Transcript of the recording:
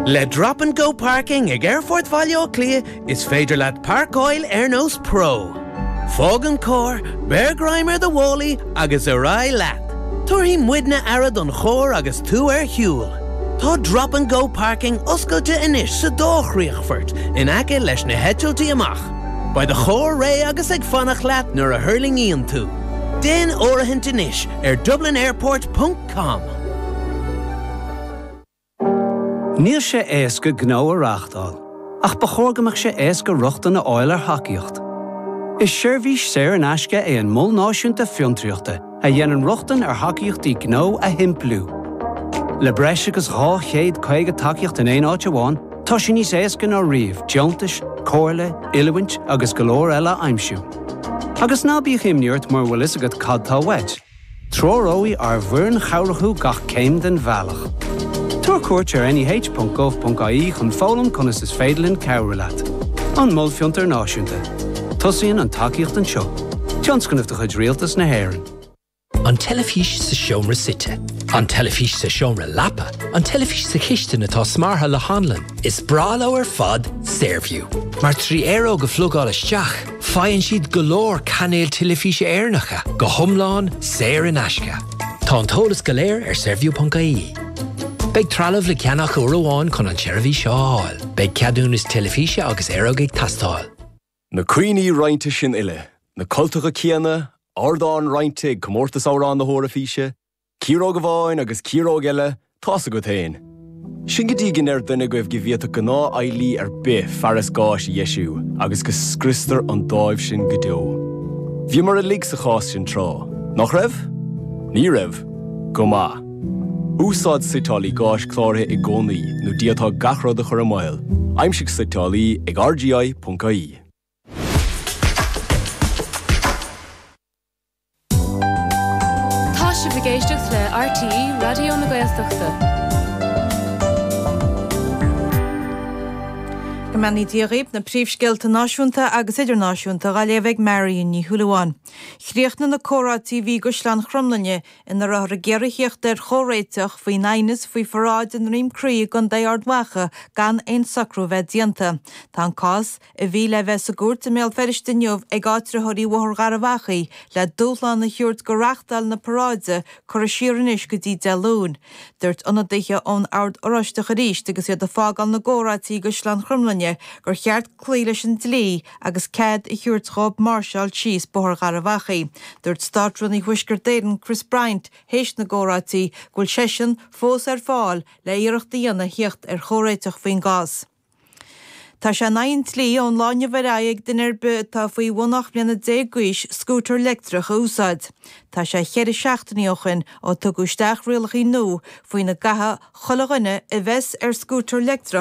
Le Drop and Go Parking ag Aerfort Bhaile Átha Cliath is féidir leat páirceáil ar nós pro. Fág an carr, beir greim ar do mhálaí agus ar aghaidh leat! Tabharfaidh muidne aire do do charr agus tú ar shiúl. Tá Drop and Go Parking oscailte anois sa dá chríochfort in aice leis na heitiltí amach. Beidh do charr réidh agus ag fanacht leat nuair a thuirlingíonn tú. Déan áirithint anois ar dublinairport. com. Níl sé éasca gnó a reáchtáil, ach ba chóir go mbeadh sé éasca rochtain a fháil ar thacaíocht. Is seirbhís saor in aisce é an Mol Náisiúnta Fiontraíochta a dhéanann rochtain ar thacaíochtaí gnó a shimpliú. Le breis agus 250 tacaíocht in aon áit amháin, tá sé níos éasca ná riamh deontais, comhairle, oiliúint agus go leor eile a aimsiú. Agus ná bíodh imní ort mura bhfuil fhios agat cad tá uait, Treoróidh ár bhfoireann chabhrach thú gach céim den bhealach. Tabhair cuairt ar neh.gov.ie chun foghlaim conas is féidir linn cabhrú leat. An Mol Fiontar Náisiúnta. Tosaíonn an tacaíocht anseo. Tionscnamh de chuid Rialtas na hÉireann. An teilifís sa seomra suite. An teilifís sa seomra leapa. An teilifís sa chistin atá smeartha le hanlann. Is breá leo ar fad Saorview, mar trí aeróg a phlugáil isteach, Faigheann siad go leor cainéal teilifíse Éireannacha go hiomlán saor in aisce. Tá an t-eolas go léir ar saorview.ie. Beidh trealamh le ceannach uair amháin chun an tseirbhís seo a fháil. Beidh ceadúnas teilifíse agus aeróg ag teastáil. Na cuimhní roinnte sin uile, na cultacha céanna, ardán roinnte ag Comórtas Amhrán na hEoraifíse, Ciaróg amháin agus ciaróg eile, tá's agat fhéin. Sin go dtí go ndeir duine agaibh go bhféadfadh gnáth-fheighlí ar bith fearas gáis a dheisiú agus go scriostar an dáimh sin go deo. Bhíomar uilig sa chás sin tráth, nach raibh? Ní raibh? Go maith. Úsáid suiteálaí gáis cláraithe i gcónaí nó diabhal tá gach rud a chur i mbaol, aimsigh suiteálaí ag rgi.ie. Tá sibh ag éisteacht le RTÉ Raidió na Gaeltachta. Go mbeannaí Dia dhaoibh, na príomhscéalta náisiúnta agus idirnáisiúnta dhá léamh ag Marion Ní Shúilleabháin. Chríochnaigh na comhráití a bhí i gCaisleán Chromghlinne ina rabhthar ag iarraidh thíocht ar chomhréiteach faoin aighneas faoi pharáid i nDroim Crí i gContae Ard Mhacha gan aon socrú a bheith déanta. Tá an cás. a bhí le bheith sa gcúirt i mBéal Feirste inniu ag áitritheoirí Bhóthar Gharbh Achaidh le dúshlán a thabhairt go reáchtáil na paráide curtha siar anois go dtí Dé Luain. Dúirt ionadaithe ón Ord Oráisteach arís agus iad ag fágáil na gcomhráití i gCaisleán Chromghlinne gur cheart cloí leis an dlí agus cead a thabhairt dhób máirseáil síos Bóthar Gharbh Achaidh. Dúirt Státrúnaí Thuaisceart Éireann Chris Bryant théis na gcomhráití go bhfuil seisean fós ar fáil le hiarracht a dhéanamh theacht ar chomhréiteach faoin gcás. Tá sé in aghaidh an dlí ón lá inniu ar aghaidh ag duine ar bith atá faoi bhun 18 mbliana d'aois scútar leictreach a úsáid. Tá sé cheithre seachtainí ó shin ó tugadh isteach rialacha nua faoina gcaithfeadh chuile dhuine a bheas ar scútar leictreach